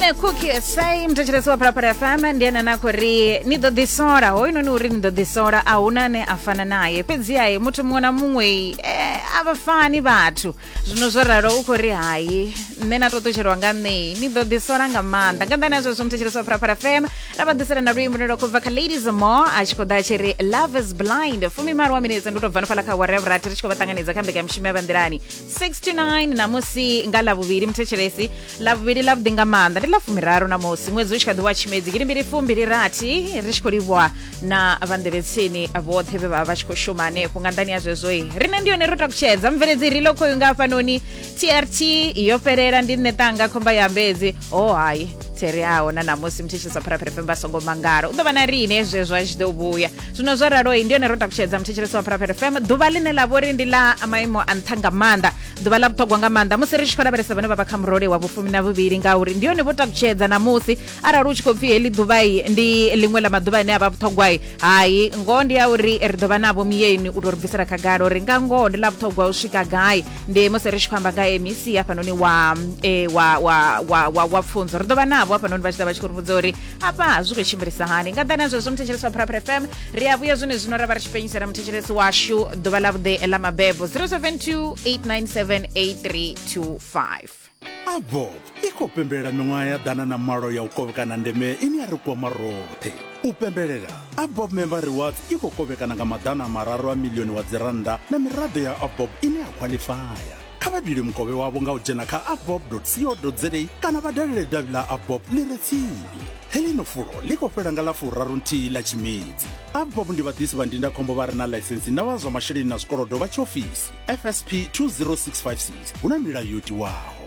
ndine cookie sai mthetshelesi wa phalaphala fm ndi ene anakho ri ni ḓo ḓisola hoyunoni uri ni ḓo ḓisola a huna ane a fana naye fhedzihaye muthu muṅwe na muṅwe eh, a vha fani vhathu zwino zwo ralo u khou ri hayi nṋe na to ṱutshelwa nga ṋei ni ḓo ḓisola nga maanḓa nga nḓani ya zwezwo mthetshelesi wa phalaphala fm ra vha ḓisela na luimbo lwo khou bva kha ladies more a tshi khou ḓa a tshi ri love is blind fumi malo wa minetse ndi u tou bva no fhala kha whatever ati ri tshi khou vha ṱanganedza kha mbekanyamushumo ya vha nḓilani 69 namusi nga lavhuvhili muthetshelesi lavhuvhili lavhuḓi nga maanḓa ndi lafumiraru namusi ṅwedzi u tshi kha ḓi wa tshimedzi gidi mbili fumbili rathi ri tshi khou livhuwa na vhanḓevhetsini vhoṱhe vhe vha vha tshi khou shuma hanefho nga nḓani ya zwezwoi riṋe ndi yone ro takutshedza mubveledzi ri lokhoyu nga hafhanoni trt yo fhelela ndi nṋe ṱanga khomba ya mbedzi o oh, hayi thereaho na namusi muthetshelesa pharaphere fembe a songo mangala u ḓo vha na riine zwezwo a tshi ḓo vhuya zwino zwo raloi ndi yone ro takutshedza muthetshelesi wa pharafere fm ḓuvha ḽine ḽa vhori ndi ḽa maimo a nṱha nga maanḓa ḓuvha ḽa vhuṱhogwa nga maanḓa musi ri tshi khou lavhelesa vhane vha vha kha murole wa vhufumi na vhuvhili ngauri ndi yone vho takutshedza ṋamusi arali u tshi khou pfi heḽi ḓuvhai ndi ḽiṅwe ḽa maḓuvha ane a vha vhuṱhogwai hai ngoho ndi ya uri ri ḓo vha navho miyeni u tou ri bvisela khagala uri nga ngoho ndi ḽa vhuṱhogwa u swika gai ndi musi ri tshi khou amba nga mec hafhanoni wa, e, wa, wa, wa, wa, wa pfunzo ri ḓo vha navho hafhanoni vha tshi ḓa vha tshi khou ri vhudza uri apa zwi khou tshimbilisa hani nga ḓani zwezwo muthetshelesi wa prapra fm ri a vhuya zwone zwino ra vha ri tshi fhenyisela muthetshelesi washu ḓuvha ḽa vhuḓe ḽa mabebo 072 897 8325 avob i khou pembelela miṅwaha ya ḓana na malo ya u kovhekana ndeme ine ya ri kwama roṱhe u pembelela abob member rewards i khou kovhekana nga maḓana mararu a milioni wa dzirannda na miraḓo ya abob ine ya khwaḽifaya kha vha dule mukovhe wavho nga u dzhena kha abob co za kana vha dalele davhi ḽa abob ḽi re tsini heḽino fulo ḽi khou fhela nga ḽa furaru nthihi ḽa tshimedzi abob ndi vhaḓisi vha ndindakhombo vha re na ḽaisensi na vha zwa masheleni na zwikolodo vha tshiofisi fsp 20656 hu na milayo yo tiwaho